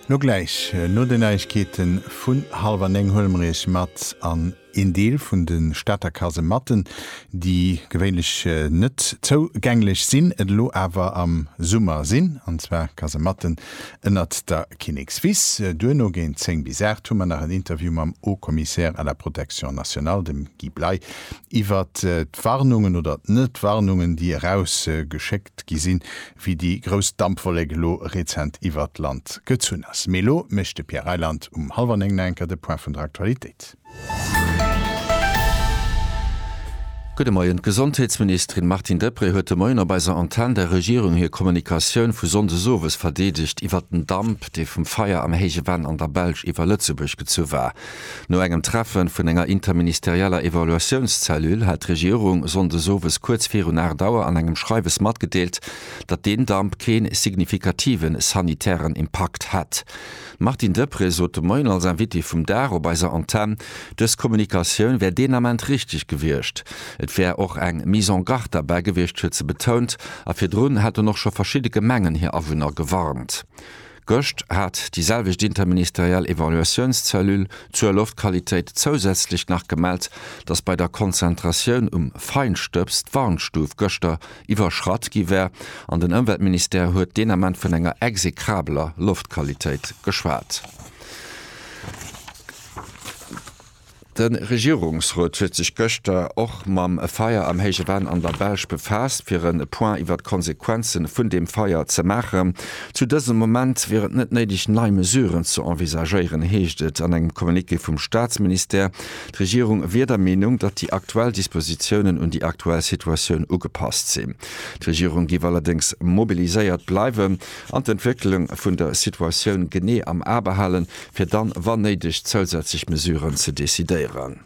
No gläich no den Neiegkeeten vun halwer 9 huele mer iech mat an een Deel vun de Stater Kasematten, déi gewéinlech net zou gänglech sinn, et elo awer am Summer sinn, an zwar Kasematten ënnert der Kinnekswiss. Duerno géint 10 bis 8 hu mer nach en Interview mam Haut Commissaire à la Protection Nationale, dem Guy Bley, iwwert d'Warnungen oder d'Net-Warnungen, déi eraus geschéckt. 't gi sinn, wéi déi grouss Dampwollek elo rezent iwwert d'Land gezunn ass. Mee elo mécht de Pierre Reyland um hallwer néng nach enker de Point vun der Aktualitéit. Gudde Moien. D'Gesondheetsministerin Martine Deprez huet de Moien op eiser Antenn der Regierung hir Kommunikatioun vu Sonndes owes verdeedegt iwwert den Damp, dee vum Feier am Héije Venn an der Belsch iwwer Lëtzebuerg gezu war. No engem Treffe vun enger interministerieller Evaluatiounszellule hat d'Regierung Sonndes owes kuerz virun 8 Auer an engem Schreiwes matgedeelt, datt deen Damp kee signifikative sanitären Impakt hätt. D'Martine Deprez sot de Moien als Invitée vum Dag op eiser Antenn, dës Kommunikatioun wär deen Ament richteg gewiescht. Et wär och eng Mise en garde derbäi gewiescht, huet se betount. A virdrun hätten och scho verschidde Gemengen hir Awunner gewarnt. Gëscht hat déi selwecht interministeriell Evaluatiounscellule zur Loftqualitéit zousätzlech nach gemellt, datt bei der Konzentratioun um Feinstëbs d'Warnstuf gëschter iwwerschratt gi wär an den Ëmweltministère huet deen Ament vun enger exekrabeler Loftqualitéit geschwat. De Regierungsrot huet sech gëschter och mam Feier am Héije Venn an der Belsch befaasst, fir e Point iwwer d'Konsequenzen vun deem Feier ze maachen. Zu dësem Moment wier et net néideg, nei Mesuren ze envisagéieren, heescht et an engem Communiqué vum Staatsministère. D'Regierung wier der Meenung, datt déi aktuell Dispositiounen un déi aktuell Situatioun ugepasst sinn. D'Regierung géif allerdéngs mobiliséiert bleiwen an d'Entwécklung vun der Situatioun genee am A behalen, fir dann, wann néideg, zousätzlech Mesuren ze decidéieren.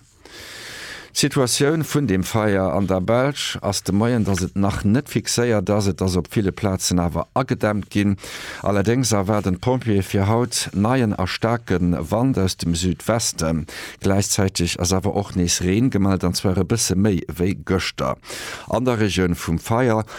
D'Situatioun vun deem Feier an der Belsch ass de Moien, dass et nach net fixéiert ass. Et ass op ville Plazen awer agedämmt ginn. Allerdéngs erwaarden d'Pompjeeë fir haut neien a staarke Wand aus dem Südwesten. Gläichzäiteg ass awer och nees Reen gemellt, an zwar e bësse méi wéi gëschter. An der Regioun vum Feier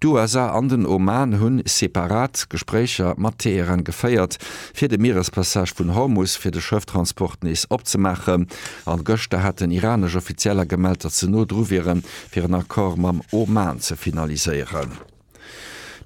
D'USA an den Oman hunn separat Gespréicher mat Teheran geféiert, fir de Mierespassage vun Hormus fir de Schëfftransport nees opzemaachen. An gëschter haten iranesch Offizieller gemellt, datt se no dru wieren, fir en Accord mam Oman ze finaliséieren.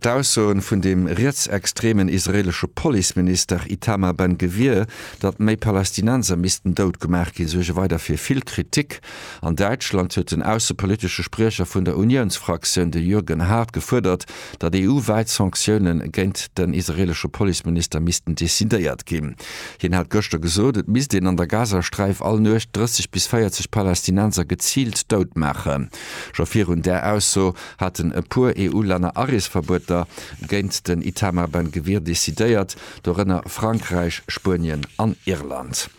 D'Aussoen vun dem rietsextremen israelesche Policeminister Itamar Ben-Gvir, datt méi Palästinenser missten dout gemaach ginn, suerge weider fir vill Kritik. An Däitschland huet den aussepolitesche Spriecher vun der Uniounsfraktioun, de Jürgen Hart, gefuerdert, datt EU-wäit Sanktioune géint den israeelesche Policeminister missten decidéiert ginn. Hien hat gëschter gesot, et misst een an der Gazasträif all Nuecht 30 bis 40 Palästinenser geziilt dout maachen. Scho virun där Ausso haten e puer EU-Länner Areesverbueter géint den Itamar Ben Gvir decidéiert, dorënner Frankräich, Spuenien an Irland.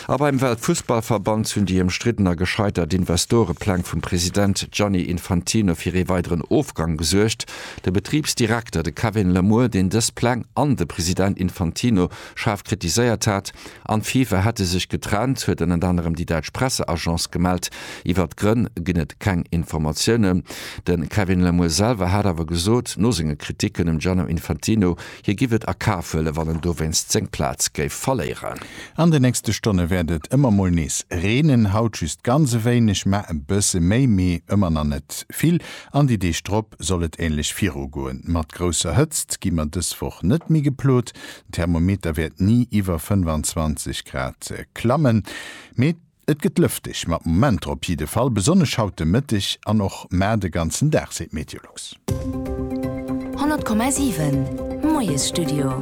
A beim Weltfussballverband hunn déi ëmstridden a gescheitert Investorepläng vum President Gianni Infantino fir ee weideren Ofgang gesuergt. De Betribsdirekter, de Kevin Lamour, deen dës Pläng an de President Infantino schaarf kritiséiert hat, an d'FIFA hätte sech getrennt, huet ënnert anerem déi däitsch Presseagence gemellt. Iwwert d'Grënn ginn et keng Informatiounen. De Kevin Lamour selwer hat awer gesot, no senge Kriticken um Gianno Infantino Hie giff et a Kaf huelen, wann en dowéinst seng Plaz géif verléieren. An de nächste Stonne wäert et ëmmer mol nees reenen, haut just ganz e wéineg, mä e bësse méi, mee ëmmer nach net vill. An déi Deeg drop soll et änlech virugoen. Mat grousser Hëtzt gi mer dës Woch net méi geplot, den Thermometer wäert ni iwwer 25 Grad klammen, mee Et gëtt lëfteg mat Momenter op jidde Fall, besonnesch haut de Mëtteg an och mar de ganzen Dag, seet Meteolux. 100,7 Moiesstudio.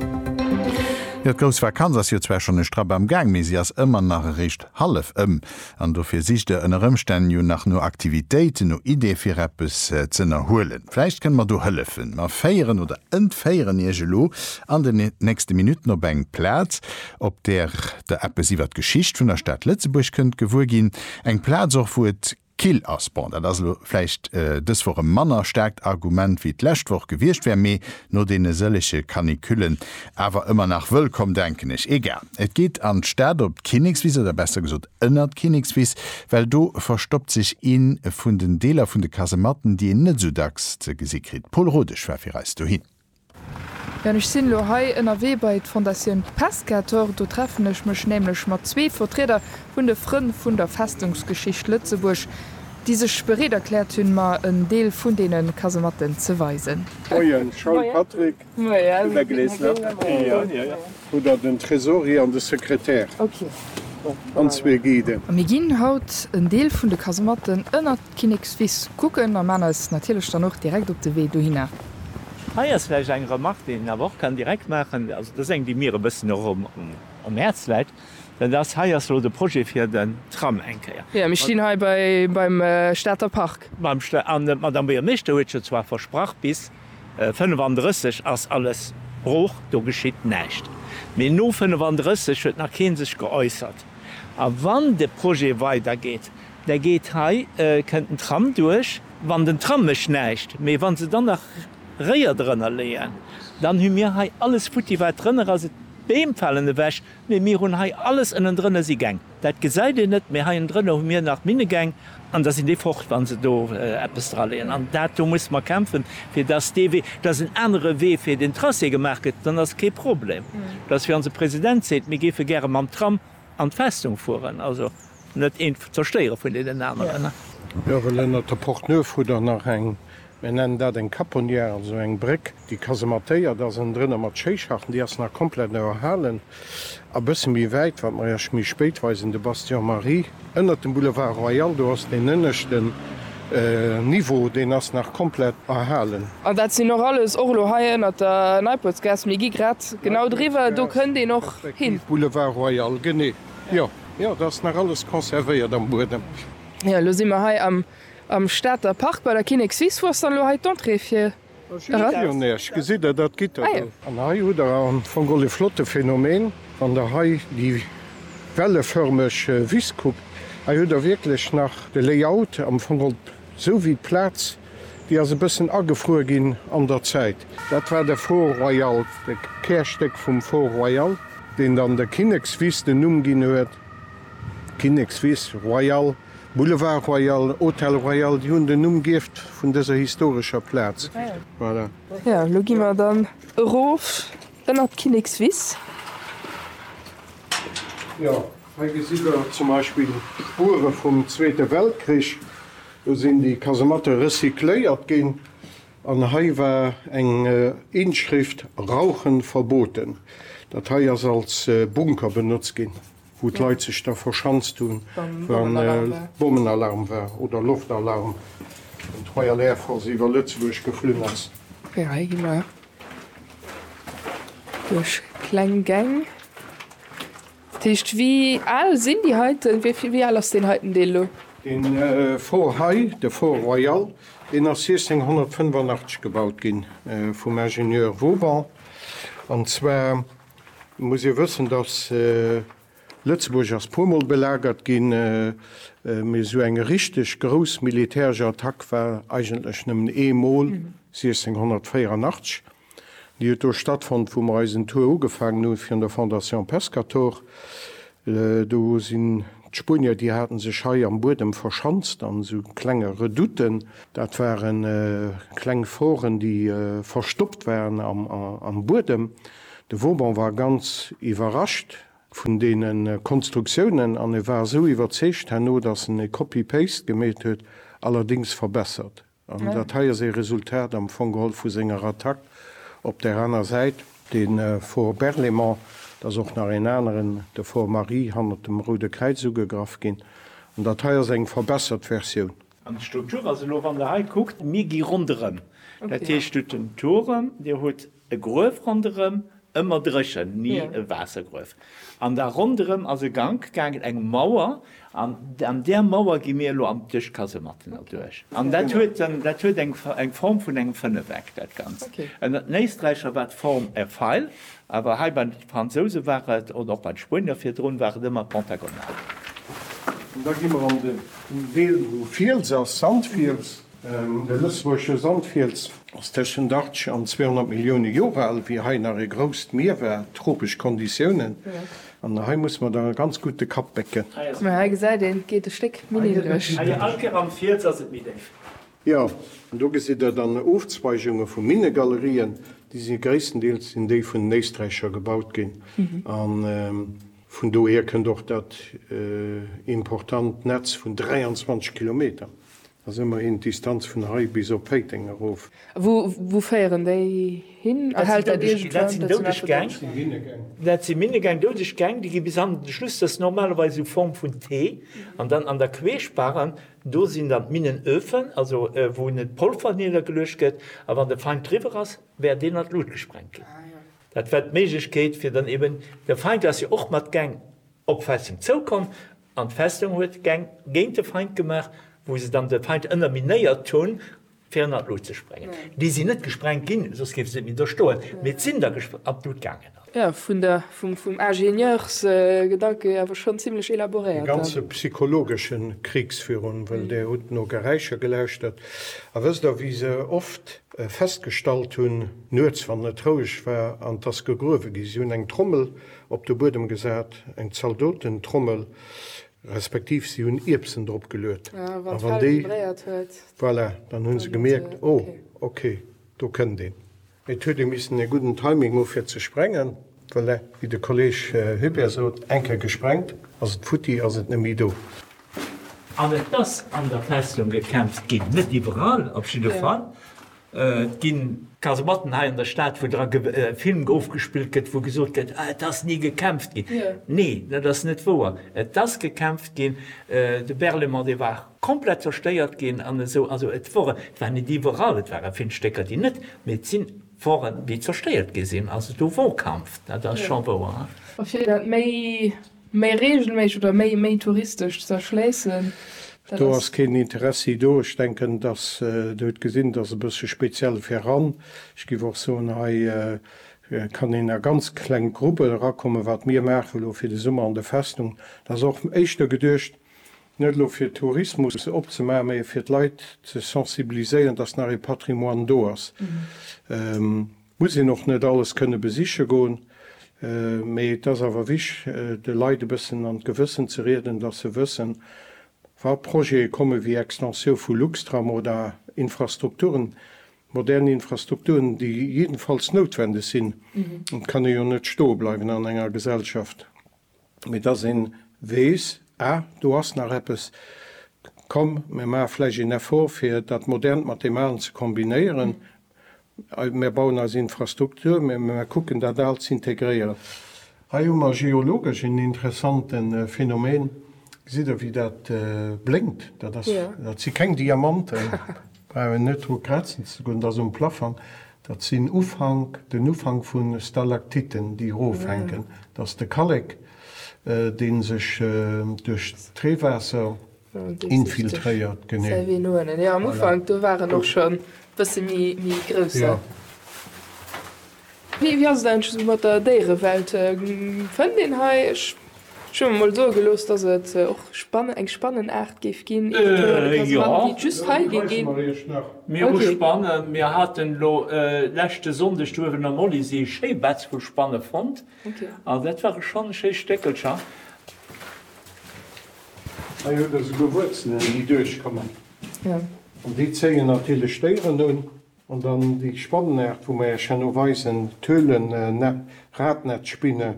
Jo, d'grouss Vakanz ass jo zwar schonn e Strapp am Gaang, mee si ass ëmmer nach eréischt hallef ëm. An dofir sicht der ënner Ëmstänn jo nach no Aktivitéiten, no Iddie fir eppes z'ënnerhuelen. Vläicht kënne mer do hëllefen. Mer féieren oder entféieren Iech elo an den nächste Minutten op eng Plaz, op där Der eppes iwwert d'Geschicht vun der Stad Lëtzebuerg kënnt gewuer ginn, eng Plaz och wou et kill ass. Bon, dat ass elo vläicht dës Woch e manner staarkt Argument wéi d'lescht Woch gewiescht wär, mee no deene sëllege Canicullen awer ëmmer nach wëllkomm, denken ech. Egal, et geet an d'Stad op d'Kinnekswiss, oder besser gesot ënner d'Kinnekswiss, well do verstoppt sech ee vun den Deeler vun de Kasematten, déi een net esou dacks ze gesi kritt. D'Paul Rodesch war fir eis dohin. An ech sinn elo hei ënnerwee bei d'Fondatioun Pescator. Do treffen ech mech nämlech mat zwee Vertrieder vun de Frënn vun der Festungsgeschicht Lëtzebuerg, déi sech bereet erkläert hunn, mer en Deel vun deene Kasematten ze weisen. Moien Charles Patrick, de Beck leest nach e Kéier. Hu der den Tresorier an de Sekretär an zwee Guiden. A mir ginn haut en Deel vun de Kasematten ënner Kinnekswiss kucken a maan eis natierlech dann och direkt op de Wee dohinner. Hei ass vläicht eng Remark, déi een awer och kann direkt maachen, also dat ass eng, déi mir e bëssen och am Häerz läit, dat ass, hei ass elo de Projet fir den Tram eng Kéier. Jo, mir stinn hei beim Stater Park. An d'Madamm Buergermeeschter huet jo zwar versprach, bis 35 ass alles brooch, do geschitt näischt, mee no 35 huet nach kee sech geäussert. A wann de Projet weidergeet, Da geet hei, kënnt den Tram duerch. Wann den Tram mécht näischt, mee wa se dann nach Réier drënner leeën, dann hu mir hei alles futti wat drënner ass. D'Beem falen ewech, mee mir hunn hei alles ënnendrënner si Gäng. Dat gesäit een net, mee hei ënnendrënner hu mir nach Minnegäng an da sinn déi fort, wa se do eppes draleeën. An dat do musse mer kämpfen, fir dass dee Wee, dass en anere Wee fir den Tracé gemaach gëtt. Dann ass et kee Problem, dass, wéi onse President seet, mir géife gäre mam Tram An d'Festung fueren, also net een zerstéieren vun deenen aneren. Jorel, ënnert der Porte Neuve hu der nach eng, mir nennen dat eng Caponnière, also eng Bréck, déi kasemattéiert ass, ënnen drënner mat Schéischachten, déi ass nach komplett erhalen. A bësse méi wäit, wat mer Iech méi spéit weisen, de Bastion Marie, ënnert dem Boulevard Royal, do ass deen ënneschten. Niveau, deen ass nach komplett erhalen. An dat sinn och alles, och elo hei ënnert der Neiportsgaass, mir gi grad genau driwwer, do kënnt een och hin. Boulevard Royal, genee, jo, jo, dat ass nach alles conservéiert am Buedem. Jo, elo si mer hei am Stater Park bei der Kinnekswiss. Wou ass dann elo hei d'Entrée fir An hei hutt der am Fong och e flotte Phänomen, wann der hei déi wellefërmeg Wiss kuckt. Hei hutt der wierklech nach de Layout, am Fong och esou wéi d'Plaz, déi ass e bëssen agefruer ginn an der Zäit. Dat war de Fort Royal, de Kärstéck vum Fort Royal, deen dann der Kinnekswiss den Numm ginn huet, Kinnekswiss, Royal. Boulevard Royal, Hôtel Royal, déi hunn den Numm gierft vun dëser historescher Plaz. Voilà. Jo, elo gi mer dann erof ënnert d'Kinnekswiss. Jo, hei gesitt der zum Beispill d'Spuere vum Zweete Weltkrich. Do sinn déi Kasematte recycléiert ginn an hei war eng Inschrift Rauchen verboten. Dat hei ass als Bunker benotzt ginn. wou d'Leit sech da verschanzt hunn, wa Bommenalarm war oder Loftalarm, wann d'Royal Air Force iwwer Lëtzebuerg geflunn ass. Jo, hei gi mer duerch kleng Gäng. Dat heescht, wéi al sinn déi heiten, wéi al ass deen heiten Deel elo? Dee Fort hei, de Fort Royal, deen ass 1685 gebaut gi vum Ingenieur Vauban, an zwar, muss ee wëssen, datt Lëtzebuerg ass puer mol belagert ginn, mee esou eng richteg grouss militäresch Attack war eigentlech nëmmen ee mol, 1684. Déi huet do stattfonnt, wou mer eisen Tour ugefaangen hu fir un der Fondation Pescator. Do sinn d'Spuenier, déi haten sech hei am Buedem verschanzt an esou klenge Redouten. Dat ware kleng Foren, déi verstoppt waren am Buedem. De Vauban war ganz iwwerrascht vun deene Konstruktiounen an e war esou iwwerzeegt herno, datt en e Copy-Paste gemeet huet, allerdéngs verbessert. An dat hei ass ee Resultat am Fong geholl vu senger Attack. Op där aner Säit, de Fort Berlaymont, et ass och nach een aneren, de Fort Marie, hannert dem Roude Kräiz ugegraff ginn. An dat hei ass eng verbessert Versioun. An d'Struktur ass elo, wann Der hei kuckt, mir gi ronderëm. Dat heescht, Dir hutt den Turm, Dir hutt E Gruef ronderëm, ëmmer dréchen, ni e Waassergruef. An da ronderëm ass e Gank gaangen, eng Mauer, an an där Mauer gi mir elo an d'Duerchkasematten erduerch. An dat huet en, dat huet eng eng Form vun engem Fënneweck, dat Ganzt. En en Éisträicher war d'Form e Feil, awer hei bei de Fransouse war et, oder och bei de Spuenier virdrun, war et ëmmer pentagonal. An da gi mer an de Deel, wou Fiels ass, Sandfiels. De Lëtzebuergesche Sandfiels ass tëschent 80 an 200 Millioune Joer al, wéi hei nach e grousst Mier war, tropesch Konditiounen, an hei musse mer da ganz gutt de Kapp bécken. Mä hei gesäit een, et geet e Stéck méi niddreg. All Kéier am Fiels ass et méi déif. Jo, do gesitt der dann Ofzweigunge vu Minnegalerien, déi si gréisstendeels sinn déi vun den Éisträicher gebaut ginn, a vun dohier kënnt och dat important Netz vun 23 Kilometer. Dat ass ëmmerhin d'Distanz vun hei bis op Péiteng erof. Wou féieren déi hin? Erhält dat iergendwou eng Doudeg Gäng? Dat si Minnegäng, Doudeg Gäng, déi gi bis an de Schluss. Dat ass normalerweis u Form vun T. An dann an der Queeschbaran, do sinn dann d'Minnenöfen, also wou net d'Polver niddergeluecht gëtt. A wann de Feind driwwer ass, wäert deen an d'Lut gesprengt ginn. Dat war d'Méiglechkeet, fir dann eeben, de Feind ass jo och mat Gäng op Festeng zoukomm, An d'Festung huet Gäng géint de Feind gemaach, wou se dann de Feind ënnerminéiert hunn, fir ënnert d'Lut ze sprengen. Déi sinn net gesprengt ginn, soss géife se net méi do stoen, mee d'sinn da an d'Lut gaangen. Jo, vun der, vum Ingenieursgedanke hier awer schonn zimlech elaboréiert. E ganze psychologesche Kriegs virun, well Der hutt no Geräischer gelauschtert. A wësst Der, wéi se oft festgestallt hunn, nuets, wann et roueg war an dass gegruewe gi? Si hunn eng Trommel Op de Buedem gesat, eng Zaldotentrommel, respektiv si hunn Ierbsen drop geluet. A wann déi vibréiert huet. Voilà, dann hu se gemierkt, oh, ok, do kënnt een. Et huet ee missen e gudden Timing hu fir ze sprengen. Voilà, wéi de Kolleeg Hubert sot, eng Kéier gesprengt, ass et futti, ass et net méi do. An et ass an der Festung gekämpft ginn, net iwwerall op jidde Fall. Et ginn Kasematten hei an der Stad, wou dra Film ofgespillt gëtt, wou gesot gëtt, ah et ass ni gekämpft ginn. Nee, dat ass net wouer. Et ass gekämpft ginn. De Berlaymont, dee war komplett zerstéiert ginn an esou. Also et wor, et war net iwwerall, et ware vill Stécker, déi net, mee et sinn woren, déi zerstéiert gi sinn. Also do wor Kampf, dat ass scho wouer. A fir dat méi. Méi reegelméisseg oder méi méi touristesch ze erschléissen. Dat Do ass. ass keen Interessi do. Ech denken, dass, Dir hutt gesinn, dass e bësse speziell fir eran. Ech giff och soen, hei kann een a ganz kleng Gruppen erakommen. Wat mir maachen elo fir de Summer an der Festung, dat ass och éischter geduecht, net elo fir Tourismus opzemaachen, mä fir d'Leit ze sensibiliséieren, dass nach ee Patrimoine do ass. Muss een och net alles kënne besiche goen, mee et ass awer wicht, de Leit e bëssen an d'Gewëssen ze rieden, datt se wëssen, wa Projete komme wéi Extensioun vu Luxtram oder Infrastrukturen, modern Infrastrukturen, déi jiddefalls noutwendeg sinn. Et kann ee jo net stoe bleiwen an enger Gesellschaft. mee dass een weess, ah, do ass nach eppes, komm, mir maache vläicht een Effort fir dat Modernt mat deem Alen ze kombinéieren, mir bauen eis Infrastruktur, mir kucken dat Aalt ze integréieren. Hei hu mer geologesch een interessante Phänomen, gesitt Der wéi dat blénkt, dat si keng Diamanten. Brauch een net dru krazen ze goen, dat ass um Plafang. Dat sinn Ufank, den Ufank vu Stalaktiten, déi erofhänken. Dat ass de Kallek, dee sech duerch d'Reewaasser infiltréiert. Genee. Wéi ass et eigentlech esou mat der Déierewelt? Fënnt een hei, ech hu mir mol soe gelooss, datt et och eng Spannen-Aart géif ginn, eventuell e Kasematten, déi et just hei géif ginn? Mir hu Spannen. Mir haten elo leschte Sonndeg do uewen am Olysee e schéi Betz vu Spanne fonnt. An dat ware schonn schéi Stéckelcher. Hei huet Der souguer Wuerzelen, déi duerchkommen. An déi zéien natierlech d'Déieren un. An dann déi Spannenart, wou mer Äech herno weisen, d'Höhlennepp, Radnetzspinne,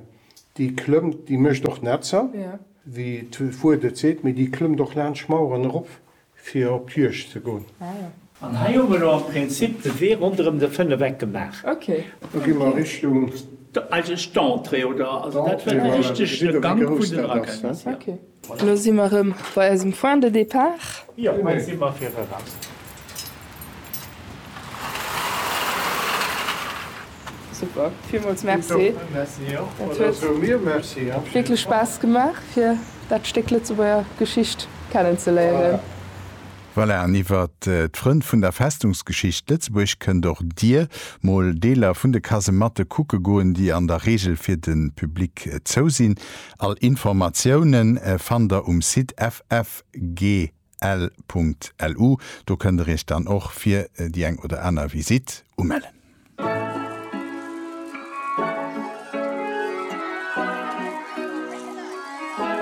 déi klëmmt, déi mécht och Netzer, wéi d'Wuert et seet, mee déi klëmmt och laanscht Maueren erop, fir op d'Juegd ze goen. An hei hu mer elo am Prinzip de Wee ronderëm de Fënnefeck gemaach. Elo gi mer Richtung. Eigentlech d'Entrée, oder? Also dat war de richtege Gank vun den Raquettes. Lo si mer rëm bei eisem Point de départ. Jo, hei si mer fir eraus. Super, villmools Merci. Dat huet wierklech Spaass gemaach, fir dat Stéck Lëtzebuerger Geschicht kennenzeléieren. Voilà, an iwwer d'Frënn vun der Festungsgeschicht Lëtzebuerg kënnt och Dir mol Deeler vun de Kasematte kucke goen, déi an der Reegel fir de Public zou sinn. All Informatiounen fannt der um Site ffgl.lu. Do kënnt der iech dann och fir déi eng oder aner Visitt umellen.